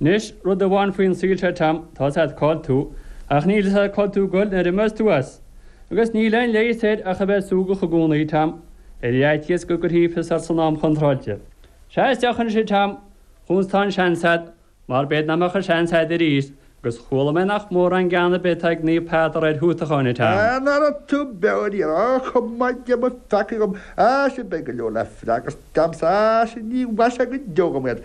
Anois, rud amháin faoin saol seo Tom, tá a fhios agat cá bhfuil tú, ach níl a fhios agat cá bhfuil tú ag goil nuair a imeos tú as. Agus níl aon leigheas air ach a bheith súgach i gcónaí, Tom, ar fhaitíos go gcuirfí fios ort san am chontráilte. Seas deoch ansin, Tom, chúns tá an seans agat, mar b'fhéidir nach mbeadh an seans agat arís, agus chuala mé nach mórán gean ar bith atá ag Naomh Peadar ar thútacháin, a Tom. Ná raibh tú beo ar iar ach go maithe Dia mo pheacaí dhom, Sea, beidh go leor le freagairt agamsa, sea, ní mhaithfidh sé go deo dhom iad.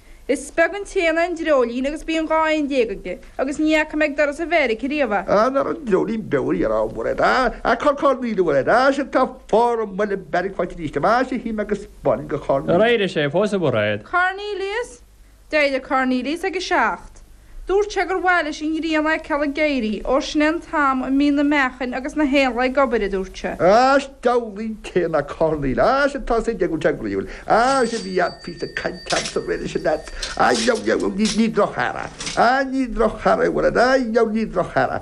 Is beag an t-éan an dreoilín agus bíonn 12 éan aige, agus ní fhaca mé ag doras an bheairic riamh é. Aon fhear an dreoilín beag a dhéanamh amuigh le dá a chorr Corneil nó le dá sin tá fágha an mbuile beiric faighte arís amais a shín agus bain go Corn. Ar éirigh sé fós i bhfad? Cornelius? D'éirigh Cornelius ag a seacht. Dúirt sé gur mhaith leis an ghrian a fheiceáil ag éirí, óir sin é an t-am a mbíonn na meachain agus na héanlaith ag obair, a dúirt sé. Áis d'ealaín céanna Corneil, áis atá sa deigiúté groíúil, áis a bhí ann fís na cainteanna sa bhreis sin air, á, ní, ní, ní, ní, ní droch-earra, á, ní droch-earra a bhfuil ann, á, ní, ní droch-earra.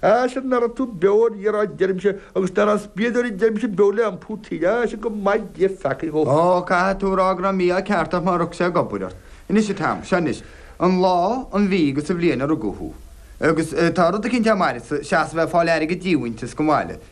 Á is ná raibh tú beo ar iarr áit deirimse agus deará spiadóirí deirimse beo le iompú taoide á is go maithe Dia mo pheacaí dhom. Ó, caithfidh tú rá go raibh mí-ádh ceart ort má rug sé ag obair ort. Anois a Tom, seo anois an lá, an mhí agus an bhliain a rugadh thú. Agus tá rud eicínt am' fhaire sa, seasamh ag fáil airgead díomhaointis go maith leat.